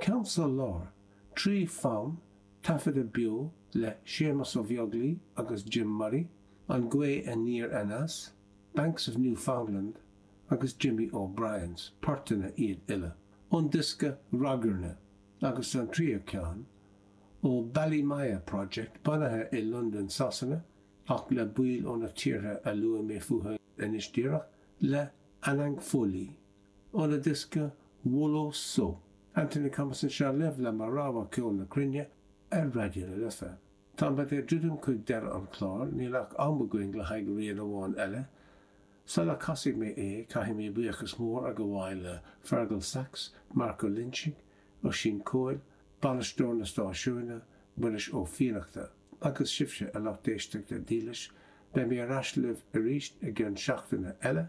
Ceann sa lár, trí fonn, taifeadadh beo le Séamus Ó Beaglaoi agus Jim Murray, An Gaoth Aniar Aneas, Banks of Newfoundland agus Jimmy O'Briens, portanna iad uile ón diosca Ragairne, agus an tríú ceann, ó Balimaya Project, bunaithe i Londain, Sasana, ach le baill ó na tíortha a luaigh mé fútha anois díreach, le Anang Foley. óna diosca, Wolo So, Anthony Thomas anseo libh le mo rogha Ceol na Cruinne ar Raidió na Life. Táimid ag druidim chuig deireadh an chláir, níl ach am againn le haghaidh rian amháin eile. Sul a casfaidh mé é, caithfidh mé buíochas mór a ghabháil le Fergal Sachs, Marco Linching, Oisín Coyle, bainisteoir na stáisiúine, Muiris Ó Fiannachta, agus sibhse, a lucht éisteachta dílis. Beidh mé ar ais libh arís i gcionn seachtaine eile.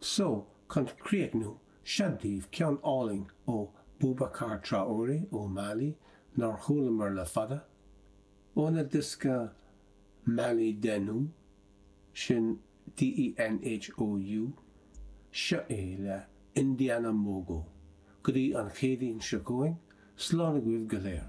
Seo chun críochnú seo daoibh ceann álainn ó Boubacar Traoré ó Mali nár chualamar le fada, óna diosca Mali Denhou, sin DENHOU, seo é le Indiana Mogo, go dtí an Chéadaoin seo chugainn, slán agaibh go léir.